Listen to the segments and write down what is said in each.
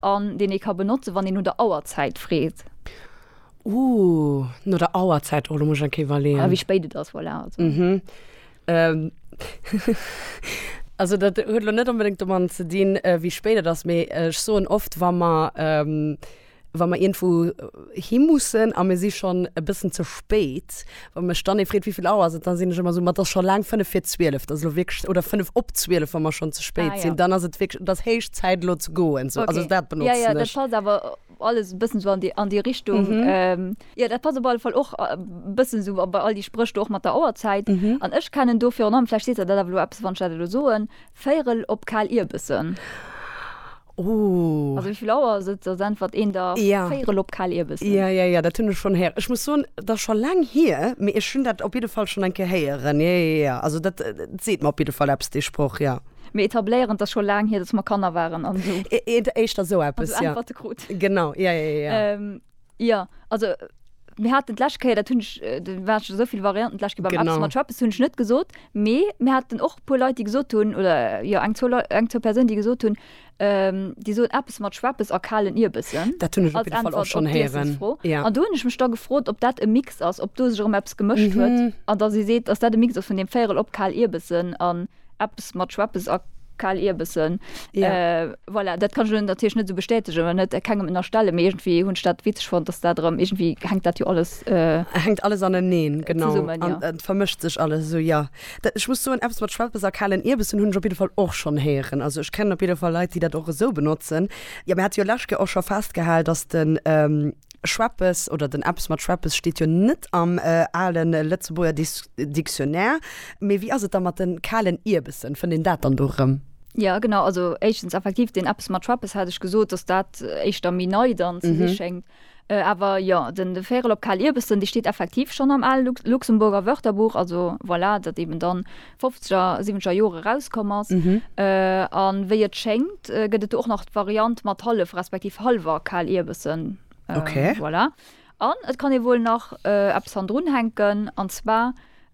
An deen ee ka benotzen, wann een no der Auerzäit freet. Ooh, no der Auerzäit, oh, do muss ech eng Kéier iwwerleeën. Wéi spéit et ass, voilà, also. Also dat huet elo net onbedéngt domadden ze dinn, wéi spéit et ass, mee ech soen oft, wa mer, wa mer iergendwou hi mussen a mir si schonn e bëssen ze spéit, Wa mech dann ee freet, wéi vill Auer ass et, da sinn ech ëmmer esou, ma et ass scho laang fënnef vir zwielef. Et ass elo wierklech, oder fënnef op zwielef, wa mer schonn ze spéit Ah, ja. sinn, dann ass et wierklech, et ass héich Zäit, elo ze goen. Sou, also Okay. dat Ja, benotzen ja, dat ech. passt awer alles e bëssen esou an déi, an déi Richtung. Ähm, ja, dat passt op alle Fall och e bëssen esou a bei all déi Spréch do och mat der Auerzäit. An ech kennen do virun allem, vläicht seet der dat awer elo eppes, wann ech dat elo soen, Véierel op kal Ierbessen. Oh. Also wéivill Auer ass et? Soss äntwert een der ja. Véirel op kal Ierbessen. Ja, ja, ja, dat hunn ech schonn héieren. Ech muss soen, dat ass scho laang hier, mee ech hunn dat op jidde Fall schonn eng Kéier héieren. Ja, ja, ja, also dat seet mer op jidde Fall eppes, dee Sproch, ja. Mir etabléieren, et ass scho laang hier, datt mer Kanner waren an esou. Eéischter esou eppes, ja. Äntwerte krut. Genau, ja, ja, ja. Ähm, Jo, also mir haten d'lescht Kéier, dat hunn ech, do waren scho souvill Varianten d'lescht Kéier beim Apps mat Trappes, hunn ech net gesot, mee mir haten och e puer Leit, déi gesot hunn, oder jo eng zwou Leit, eng zwou Persounen, déi gesot hunn, déi soen Apps mat Schweppes a kalen Ierbessen als Äntwert op d'Iessensfro. An do hunn ech mech da gefrot, ob dat e Mix ass, ob do sech erëm eppes gemëscht huet an datt ee seet, datt dat e Mix ass vun deem Véierel op kal Ierbessen an. Eppes mat Schweppes a Kal-Ierbessen. Ja. Voilà, dat kann ech elo natierlech net esou bestätegen oder net kengem ënnerstellen, mee iergendwéi hunn ech dat witzeg fonnt, dass dat erëm, iergendwéi hänkt dat jo alles. Hänkt alles aneneen, genau. Zesummen, jo. An et vermëscht sech alles esou, jo. Dat, ech muss soen, eppes mat Schweppes a kalen Ierbessen hunn ech op jidde Fall och schonn héieren. Also ech kennen op jidde Fall Leit, déi dat och esou benotzen. Jo, mir hate jo lescht Kéier och scho festgehal, dass de. Schweppes oder den Eppes mat Schweppes steet jo net am ale Lëtzebuerger Dictionnaire. Mee wéi ass et da mat de kalen Ierbessen? Fënnt een dat dann do erëm? Jo, genau. Also éischtens effektiv, deen Eppes mat Schweppes hat ech gesot, dass dat éischter méi nei dann ze si schéngt. Awer jo, den Vérel op kal Ierbessen, dee steet effektiv schonn am ale Luxemburger Wörterbuch. Also voilà, datt eeben dann fofzeger, siweneger Jore erauskomm ass. A wéi et schéngt, gëtt et do och nach d'Variant mat hallef respektiv hallwer Kaalierbessen. Voilà. An et kann ee wuel nach eppes hannendrun hänken, an zwar,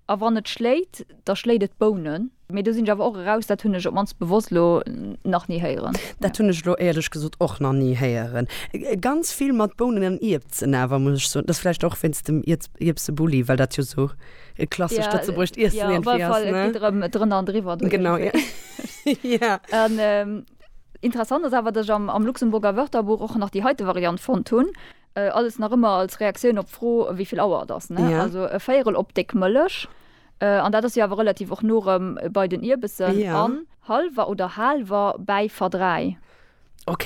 A wann et schléit, da schléit et Bounen. Mee do sinn ech awer och eraus, dat hunn ech op d'mannst bewosst elo nach ni héieren. Dat hunn ech elo éierlech gesot och nach ni héieren. Ganz vill mat Bounen an Ierbsen awer, muss ech soen. Dat ass vläicht och wéinst dem Ierbsebulli, well dat jo esou. E klassescht lëtzebuergescht Iessen Ja, op irgendwie alle Fall, ass, et ne? geet erëm drënner an driwwer. do Genau, ja. iergendwéi. Ja. An ähm, interessant ass awer, datt ech am, am Luxemburger Wörterbuch och nach déi heite Variant fonnt hunn, äh, alles nach ëmmer als Reaktioun op d'Fro, wéi vill Auer et ass, ne? Ja. Also e Véierel op déck Mëllech, äh, an dat ass jo awer relativ och no erëm bei den Ierbessen, Ja. an halwer oder haalwer bäi verdräi. Ok,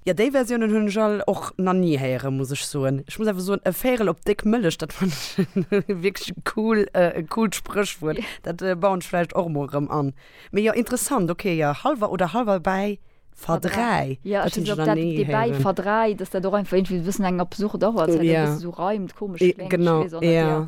jo déi Versiounen hunn ech all och na ni héieren muss ech soen. Ech muss awer soen e Véirel op déck Mëllech dat fannen ech wierklech e cool e coolt Spréchwuert. Dat bauen ech vläicht och mol rëm an. Mee jo interessant ok jo halwer oder halwer bäi verdräi dat hunn ech nach ni héieren. Verdräi, dass dat och einfach iergendwéi e bëssen eng absurd Auer ass well dat e bësse sou reimt komesch kléngt. Genau jo.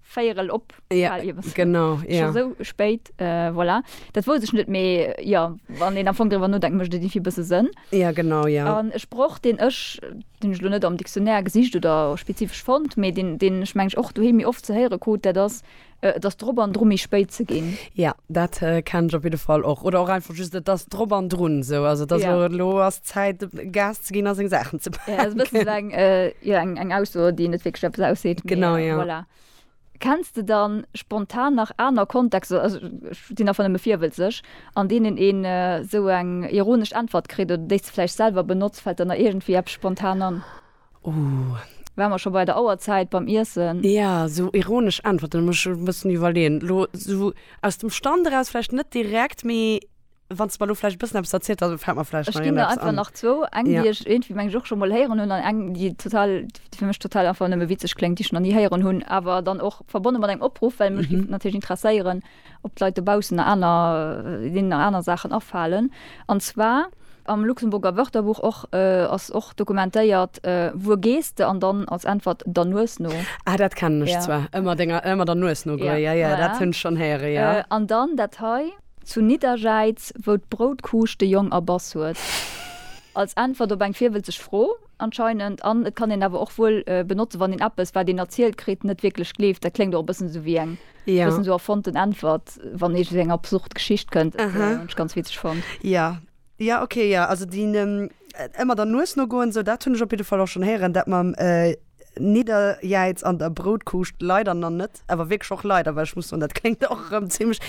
Véierel op, bal iwwer. Ja, genau, ja. Scho sou spéit, voilà. Dat wousst ech net, mee jo, wann een am Fong driwwer nodenkt, mécht et iergendwéi e bësse Sënn. Ja, genau, ja. An e Sproch, deen ech, deen ech elo net am Dictionnaire gesicht oder spezifesch fonnt, mee deen, deen ech mengen ech och doheem méi oft ze héiere krut, dat ass, Et ass drop an dru méi spéit ze ginn. Ja, dat kennen ech op jidde Fall och. Oder och einfach just, Et ass drop an drun, sou. Also, et ass elo, elo ass. Zäit dem Gas ze ginn a seng Saachen ze paken. Ja, dat ass eng, jo, eng, eng Ausso, déi net wierklech eppes ausseet. Genau, jo. Voilà. Kenns de dann spontan nach aner Kontexter, also ech sinn einfach nëmme virwëlzeg, an deenen ee sou eng ironesch Äntwert kritt oder déi s de vläicht selwer benotzt? Fält der nach iergendwéi eppes spontan an? Uh. Wa mer scho bei der Auerzäit beim Iessen. Ja, sou ironesch Äntwerten, da muss ech e bëssen iwwerleeën. Lo sou aus dem Stand eraus vläicht net direkt, mee Wann s de mer elo vläicht e bëssen eppes erzielt, da fält mer vläicht nach iergendeppes an. Ech ginn der einfach nach zwou. Eng, déi ech iergendwéi, meng ech, och scho mol héieren hunn an eng, déi total, déi fir mech total einfach nëmme witzeg kléngt, déi ech nach ni héieren hunn, awer dann och verbonne mat engem Opruff, well mech géif natierlech interesséieren, ob d'Leit dobaussen nach aner, deenen nach aner Saachen afalen. An zwar, Am Luxemburger Wörterbuch och ass och dokumentéiert, Wuer gees de? an dann als Äntwert, Der Nues no. Ah, dat kennen ech zwar, ëmmer denger, ëmmer der Nues no goe. Jo, jo, dat hunn ech schonn héiere, jo. An dann dat hei. Zu Nidderjäiz, wou d'Broutkuusch de Jong erbass huet. Als Äntwert op eng virwëlzeg Fro, anscheinend. An et kann een awer och wuel benotzen, wann een eppes, wat een erzielt kritt, net wierklech gleeft. Dat kléngt och e bëssen esou wéi eng bëssen esou erfonnten Äntwert, wann ee sou eng absurd Geschicht kënnt, wat ech ganz witzeg fonnt. Ja ok ja also dien emmer der Nues no goen esou daat hun ech op jidde Fall och schon héieren. Daat mam Nidderjäiz an der Broutkuuscht leider na net, awer wierklech och leider well ech muss soen daat kléngt och erem zimmlech,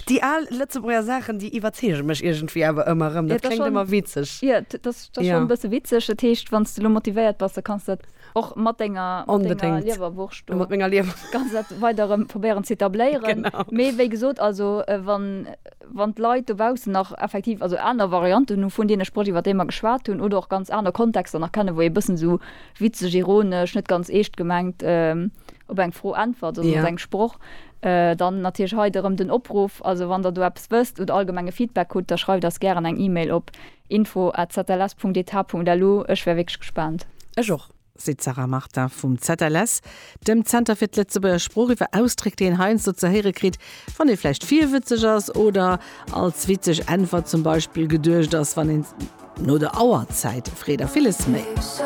déi aal letzebuerger Saachen déi iwwerzeegen mech iergendwéi awer emmer erem, daat kléngt emmer witzeg. Jo daat ass schon en bessen witzeg, daat heescht wanns de lo motivéiert bass da kanns daat och mat denger Liewerwurscht do weider erem probéieren ze etabléieren, mee wéi gesoot also wann. wann d'Leit dobaussen nach effektiv also aner Varianten hu vun deene Sprëch, iwwer déi mer geschwat hunn, oder och ganz aner Kontexter nach kennen, wou ee e bëssen esou witzeg, ironesch, net ganz eescht gemengt op eng Fro äntwert oder op eng Sproch, dann natierlech hei erëm den Opruff. Also wann Der do eppes wësst oder allgemenge Feedback hutt, da schreift eis gären eng E-Mail op info at zls.eth.lu. Ech wär wierklech gespaant. Ech och. seet d'Sarah Martin vum ZLS, dem Zenter fir d'Lëtzebuerger Sprooch, iwwer Ausdréck, déi een heiansdo ze héiere kritt, wann ee vläicht virwëtzeg ass oder als witzeg Äntwert zum Beispill geduecht ass, wann een no der Auerzäit freet a villes méi.